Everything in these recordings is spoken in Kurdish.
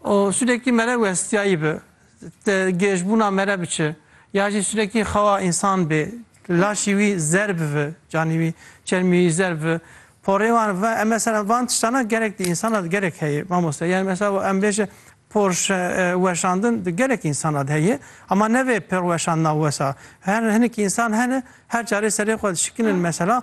O sûdekî mere westiyayî bi, ti gêjbûna mere biçi, ya jî sûdekî xewa însan bê, laşî wî zer bivi, canî wî, çermî wî zer bivi. Porê wan ve, em mesela van tiştana gerek di însanan gerek heye mamoste. Yanî mesela em bêje por weşandin di gerek însanan heye ama ne vê por weşandina wesa. Her hinek însan hene her carê serê xwe dişikinin mesela.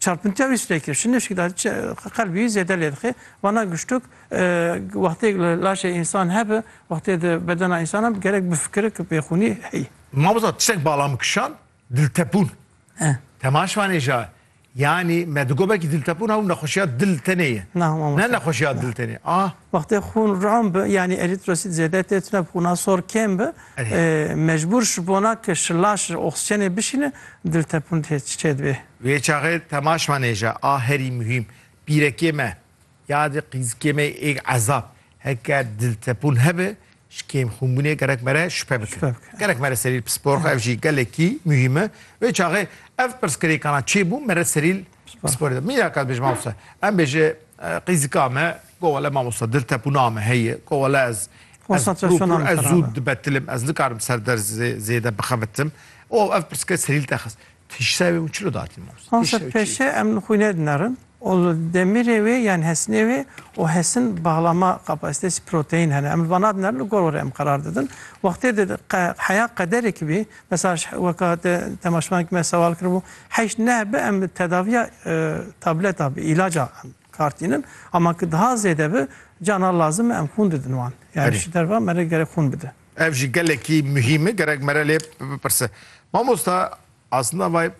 Çarpintiya wî stêkir şinê şikda qelbî zêde lê dixê. Vana giştuk wextê li laşê însan hebe, wextê di bedena însan hebe gerek bifikire ki pêxûnî heye. Mamosta tiştek bala min kişand, diltepûn. Temaş vanê ja yanî me digot belkî diltepûn ew nexweşiya dil tenê ye. Ne nexweşiya dil tenê. Ah. Wextê xûn ram bi yanî erîtrosit zêde tê tune bi xûna sor kêm bi mecbûr ji bona ke şila şir oksîjenê bişîne diltepûn tê çêdibê. Wê çaxê temaş ma nêje a herî muhîm pîrekê me ya di qîzikê me êg ezab heke diltepûn hebe ji kêmxûnbûnê gerek me re şüphe bike. Gerek me re serîl pispor xwe ev jî gelekî muhîme. Wê çaxê ev pirsgirêkana çêbû me re serîl Sipor ê. Mîna ka dibêje mamoste. Em bêje qîzika me go wele mamoste dil tepûna me heye go wele ez Konsantrasyona me xerab e. Zû dibetilim ez nikarim ser ders zêde bixebitim û ev pirsgirêk serîl te xist. Tiştê wê min çilo datî mamoste? Mamoste pêşê em li xwînê dinerin û li demîrê wê yan hesinê wê û hesin baxlama kapasitesi proteîn hene. Em li vana dinerin li gor were em qerar didin. Wextê di heya qederekî bî Mesaj, Weka te temaşevanekî me sewal kiribû, heyş ne bi em tedaviya tableta bi îlaca em kar tînin ama ki diha zêde bi cana lazim e em xûn didin wan. Yanî ji derva mere gerek xûn bide. Ev jî gelekî muhîm e gerek mere lê bipirse. Mamosta aslında vay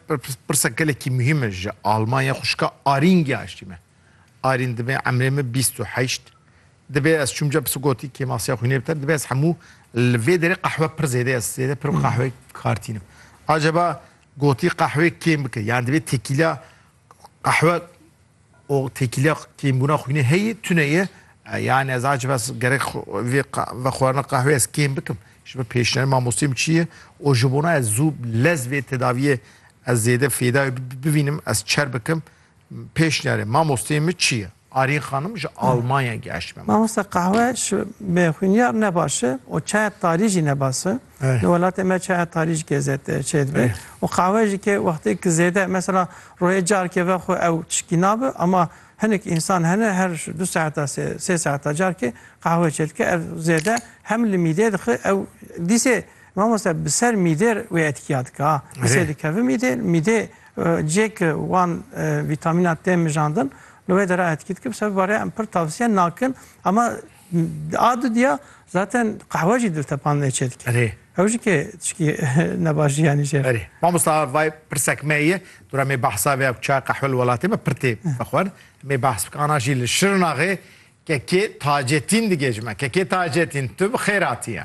pirsek gelekî muhîm e ji Almanya xwişka Arîn gihaştî me. Arîn dimê emrê min bîst û heşt Divê ez çûm cep sigotî kêmasiya xwînê bi ter, divê ez hemû li vê derê qehwe pir zêde ez zêde pir qehweyê kartînim. Acaba gotî qehwê kêm bike yan divê têkîliya qehwe û têkîliya kêmbûna xwînê heye tune ye yani ez acaba ez gerek vê vexwarina qehwê ez kêm bikim ji ber pêşniyarê mamosteyê çi ye û ji bona ez zû lez vê tedaviyê ez zêde fêdayê bivînim ez çer bikim pêşniyarê mamosteyê min çi ye? Arîn xanim ji Almanya geşt me. Mamosta qahwe ji bi xwîniyar ne baş e û çaya tarî jî ne bas e. Di welatê me çaya tarî ji kê zêde çê dibe û qahwe jî kê wextê ki zêde mesela royê carkê ve xwe ew tişkî nabe ama hinek însan hene her ji du saeta sê sê saeta carkê qahwe çê dike ev zêde hem li mîdê dixe ew dîsê mamosta bi ser mîdêr wê etkiya dike ha dîsê dikeve mîdê mîdê Cihê ku wan vîtamînan tê mijandin li wê de re etkî dike. Bi ser vî barê em pir tavsiye nakin. Ama a du diya zaten qehwe jî diltepan lê çê dike. Erê. Ew jî kê tişkî ne baş jî yanî jê re. Erê. Mamosta vay pirsek me ye. Dora mê behsa vê ya ku çay qehwe li welatê me pir tê vexwend. Mê behs bike ana jî li Şirnaxê kekê tacetîn digê ji me. Kekê tacetîn tu bi xêr hatiye.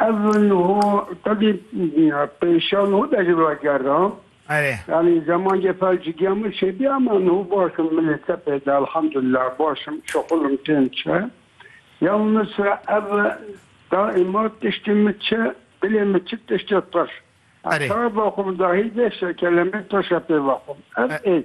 Ev niho tevî pêşa niho dejî ragerda. Erê. Yanî zemancê fel cigiya min şêbî ama niho baş im min ê tepê de elhamdulillah baş im şixul im tên çi. Ya Misra ev daîma tiştê min çi dilê min çi tiştê tuş. Erê. Çawa vexwim dahî vê şekelemê tuşe pê vexwim. Ev êk.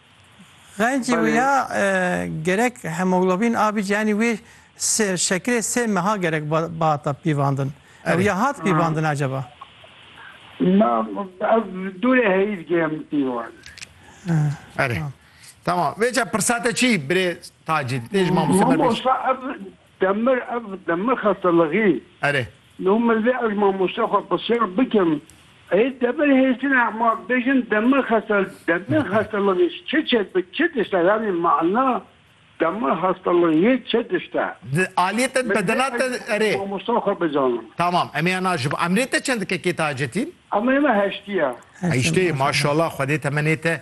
Xencê wê ya gerek hemoglobin A bî yanî wê şekirê sê meha gerek bihata pîvandin. Ew ya hat pîvandin acaba? Na ev dûrê heyît gêm pîvan. Erê. Tamam. Vêca pirsate çî birê Tacî? Dê ji mamoste Mamo sa ev Demir ev demir xestelixî. Erê. Nû min vê ez mamoste xwe pirsiyar bikim ê demir hêsine ma bêjin demir xestel demir xestelixî çi çêd bi çi dişte yanî mana demir xestelixî çi dişte. Di aliyê te di bedena te erê. Mamosta xwe bizanim. Tamam em ê ya naji bo. Emrê te çend dikekê tacetîn? Emrê me heştî ya. Heştê maşallah xwedê temenê te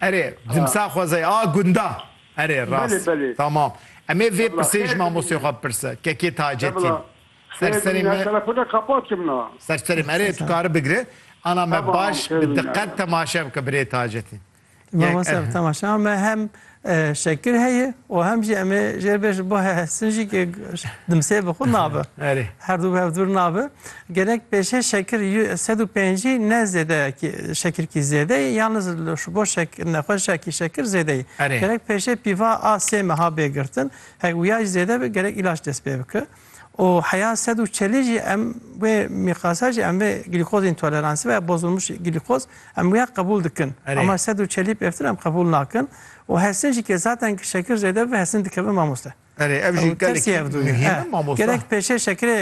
Erê, dimsal xwezayê, a gunda. Erê, rast. Tamam. Em ê vê pirsê ji mamosteyê xwe bipirse, kekê Tacetîn. Ser serê me. Ser serê me. Erê, tu kari bigire. Ana me baş bi diqet temaşe bike birê Tacetîn. Mamoste bi temaşeya me hem şekir heye û hem jî em ê jêrbêjin bo hesin jî ke dimsê bi xwe nabe. Erê. Her du bi hev dûr nabe. Gerek pêşê şekir sed û pêncî ne zêde şekirkî zêde yê yan ji bo nexweşa kî şekir zêde yê. Gerek pêşê pîva a sê meha bê girtin. Hek wiya jî zêde be gerek îlac dest pê bike. Û heya sed û çelî jî em wê mîqasa jî em vê glîkoz întoleransî veya bozulmuş glîkoz em wiya qebûl dikin. Ama sed û çelî pêvtir em qebûl nakin. Û hesin jî ke zaten ke şekir zêde bibe hesin dikeve mamoste. Erê ev jî gelek muhîme mamosta. Gerek pêşê şekirê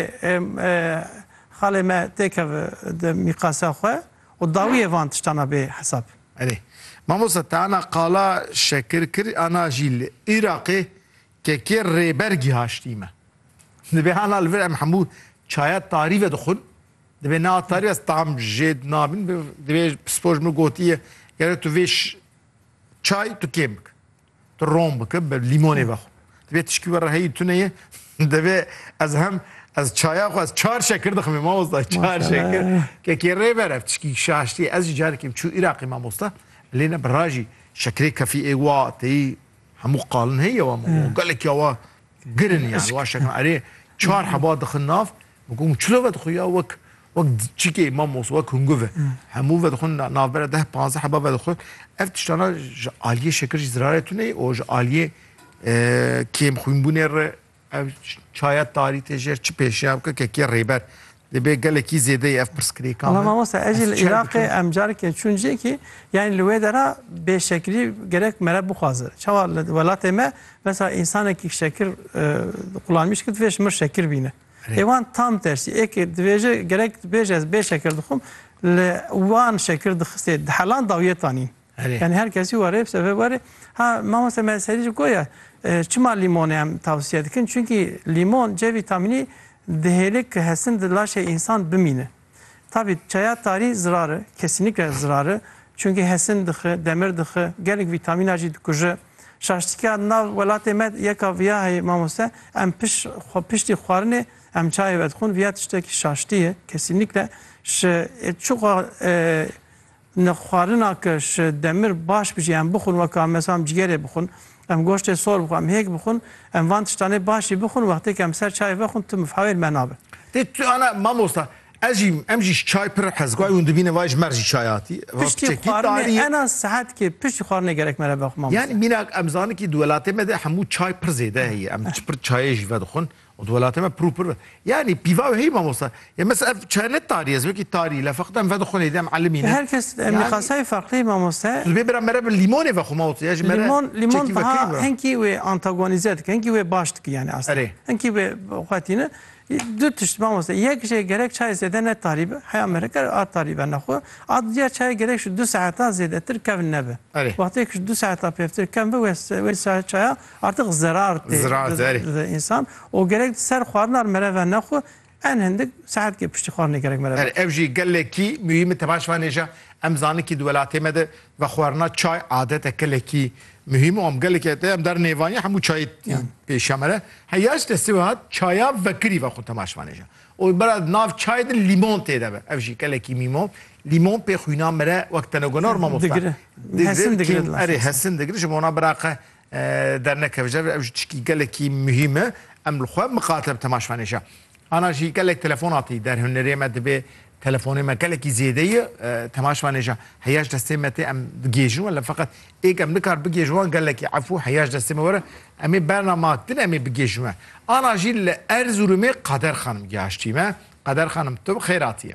xalê me têkev di mîqasa xwe û dawiyê van tiştan a bê hesab. Erê. Mamosta te ana qala şekir kir ana jî li Îraqê kekê rêber gîhaştî me. Dibê ana li vir em hemû çaya tarî ve dixwin. Dibê niha tarî ez tam jê nabin dibê pispor ji min gotiye gerek tu vê çay tu kêm bik. Tu rom bike bi lîmonê vexwe. Divê tişkî we re heyî tune ye. Divê ez hem ez çaya xwe ez çar şekir diximê mamosta çar şekir. Kekê rê ver ev tişkî şaştî ez jî carekêm çû Îraqê mamosta. Lê ne bi ra jî şekirê kefî ê wa têyî hemû qalin heye wa gelekî ya wa girin yani wa şekin erê çar heba dixin nav. Gotin çilove dixwe ya wek Wek çîkê mamos, wek hungu ve. Hemû vedixwin navbera deh panzdeh heba vedixwin. Ev tiştana ji aliyê şekir jî zirarê tuneyê û ji aliyê kêm xwînbûnê re ev çaya tarî tê jêr çi pêşiya bike kekiya rêber. Dibê gelekî zêdeyê ev pirsgirêkan. Valla mamosta ez jî li Iraqê em carekê çûn cihekî yanî li wê de re bêşekirî gerek mere bixwaze. Çawa li welatê me mesela însanekî şekir qulanmîş kir divê ji mir şekir bîne. Lê wan tam tersî ê kir. Dibêje gerek dibêje ez bê şekir dixwim li wan şekir dixistê di helan dawiyê tanîn. Yanî her kesî were bi sebeb were ha mamoste me serî jî goya çima lîmonê em tewsiye dikin? Çunkî lîmon C vîtamînî dihêle ki hesin di laşê însan bimînin. Tabî çaya tarî zirar e, kesînîkle zirar e, çunkî hesin dixi, demir dixi, gelek vîtamîna jî dikuje. Şaştîkîya nav welatê me yeka vîya heye mamoste, em pişt xwe piştî xwarinê em çayê vedixwin, vîya tiştekî şaştî ye, kesînîkle ji çiqo Ni xwarina ke ji demir baş bijî em bixwin weka mesela em cîgerê bixwin, em goştê sor bixwin, em hêk bixwin, em van tiştanê baş jî bixwin wextê ke em ser çayê vexwin tu mifhawê li me nabe. Tê tu ana mamosta ez jî em jî ji çay pir hez guay hûn dibînin vay ji mer jî çay hatî va Piştî piçekî xwarinê tarî ye. ena sihetkê piştî xwarinê gerek me re vexwin mamosta. Yanî mînak em zanin kî di welatê me de hemû çay pir zêde heye em çi pir çayê jî vedixwin Û di welatê me pir û pir be. Yanî pîva wê heyî mamosta. Ya mes ev çaye ne tarî ye, ez wekî tarî le feqî em vedixwin êdî em elimî ne. Her kes miqasayê ferqlê mamoste. Tu dibê bira mere bi lîmonê vexwe mamoste ya ji mere çekî vekirî bira. Lîmon lîmon taha hinkî wê antagonîze dike, hinkî wê baş dike yanî astê. Hinkî wê xwe tîne. Du tişt mamoste. Yek jî gerek çayê zêde ne tarî be. Heya mere ker a tarî be ne xwe. A duyar çayê gerek ji du saetan zêdetir kevn nebe. Wextêk ji du saetan pêvtir kevn be wê çaya Artiq zerar tê di însan û gerek di ser xwarinan mereve nexwe en hindik saetkê piştî xwarinê gerek mereve nexwe. Ev jî gelekî muhîm e tebaş vanê jî em zanin kî di welatê me de vexwarina çay adeteke lekî muhîm û em gelekî te em dar nêvanî hemû çayê pêşiya me re heya ji destê we hat çaya vekirî vexwe temaş vanê jî û bira di nav çayê de lîmon tê de be ev jî gelekî muhîm o lîmon pê xwîna me re wek tenegona rûma mafta digire hesin digire ji bo na bira qe Dernekeve je ve ew jî tiştî gelekî muhîm e. Em li xwe miqate bi temaşvanê je. Ana jî gelek telefon hatî der hunerê me dibê telefonê me gelekî zêde yi temaşvanê je heya ji destê me tê em bigihêjin wan lê feqet ê ke em nikar bigihêjin wan gelekî efû heya ji destê me were em ê berna ma din em ê bigihêjin we. Ana jî li Erzurumê Qader Xanim gihaştî me. Qader Xanim tu bi xêr hatiyê.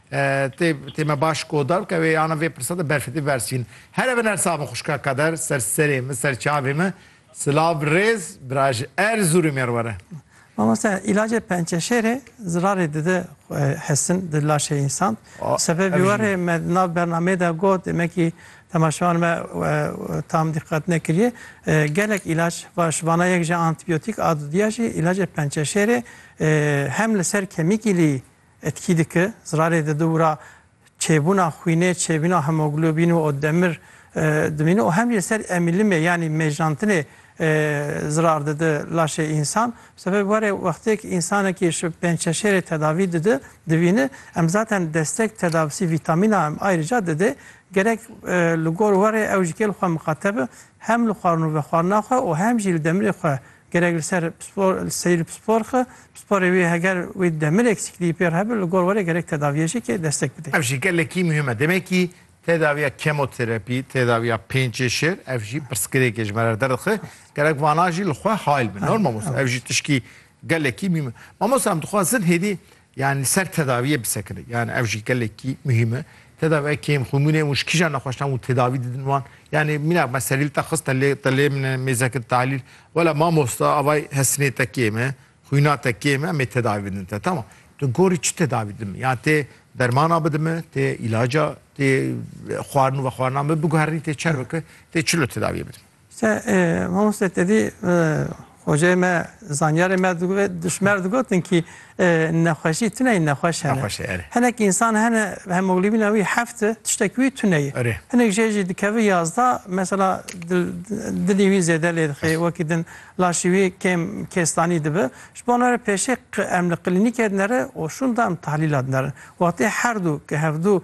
Tê tê me baş kodar bike wê ana vê pirsa de berfetê versîn. Here bin ersa min xuşka kader ser serê min ser çavê min. Silav rêz bira ji Erzurumê re were. Mamoste ilacê pençeşêrê zirarê dide hesin di laşê însan. Sebebî we rê me di nav bernameyê de got demekî temaşevan me tam diqet nekiriye. Gelek îlaç va ji vana yek jî antîbiyotîk a dudîya jî îlacê pençeşêrê hem li ser kemîkî lî Etkî dike, zirarê di dûra çêbûna xwînê, çêbîna hemoglobîn û demir dimîne û hem jî li ser emîlimê yanî mêjnantinê zirar dide laşê însan. Bi sebebê warê wextêk însanekî ji pêncçeşêrê tedavî dide, divîne, em zaten destek tedavisî vîtamîna em ayrıca didê, gerek li gor warê ew ji kêl xwe miqate be, hem li xwarin û vexwarina xwe û hem jî li demirê xwe Gerek li ser seyîr pispor xwe, pisporê wî heger wê demirek sîkliyî pê re hebe li gor were gerek tedaviyê jî ke destek bide. Ev jî gelekî muhîm e. Demekî tedaviya kemoterapî, tedaviya pêncê şêr ev jî pirsgirêk e ji me re derdixe. Gerek vana jî li xwe hayl bin. Normal mamoste ev jî tişkî gelekî muhîm e. Mamoste em dixwazin hêdî Yan li ser tedaviyê bisekine. Yan ev jî gelekî muhîm e. Tedaviya kêm xwe mûnê û ji kîjan nexweşan û tedavî didin wan? Yanê mîna me serîl te xist te lê te lê min e mêzeke tahlîl. Wela mamosta avay hesinê te kêm e, xwîna te kêm e em ê tedavî bidin te. Tamam. Tu gorî çi tedavî didin min? Yan tê dermana bidin min, tê îlaca, tê xwarin û vexwarinan min biguherînî tê çerveke, tê çilo tedaviyê bidin min? Te mamoste tedî xoceyê me zanyarê me dişmer digotin kî nexweşî tuneyî nexweş hene. Nexweş e, erê. Hinek însan hene hemoglobîna wî heft e, tiştekî wî tune ye. Erê. Hinek jê jî dikeve yazda, mesela dilî wî zêde lê dixê, wekî din laşî wî kêm kêstanî dibe. Ji bo re pêşê em li klînîkê dinere û şûnda em tahlîla dinerin. Wextê her du ke hevdu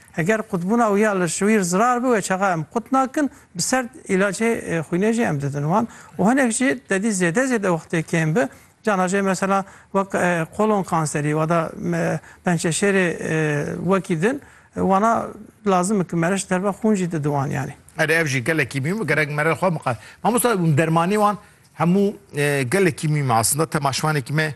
Eger qutbûna wî ya li şwîr zirar bi wê çaxa em qut nakin, bi serd îlacê xwînê jî em didin wan û hinek jî tedî zêde zêde wextê kêm bi cana jê mesela wek kolon kanserî wada pençeşêrê wekî din wana lazim ki mere ji derve xwûn jî didin wan yanî. Erê ev jî gelekî mîm gerek mere xwe miqate. Mamosta dermanê wan hemû gelekî mîm e aslında tema şivanekî me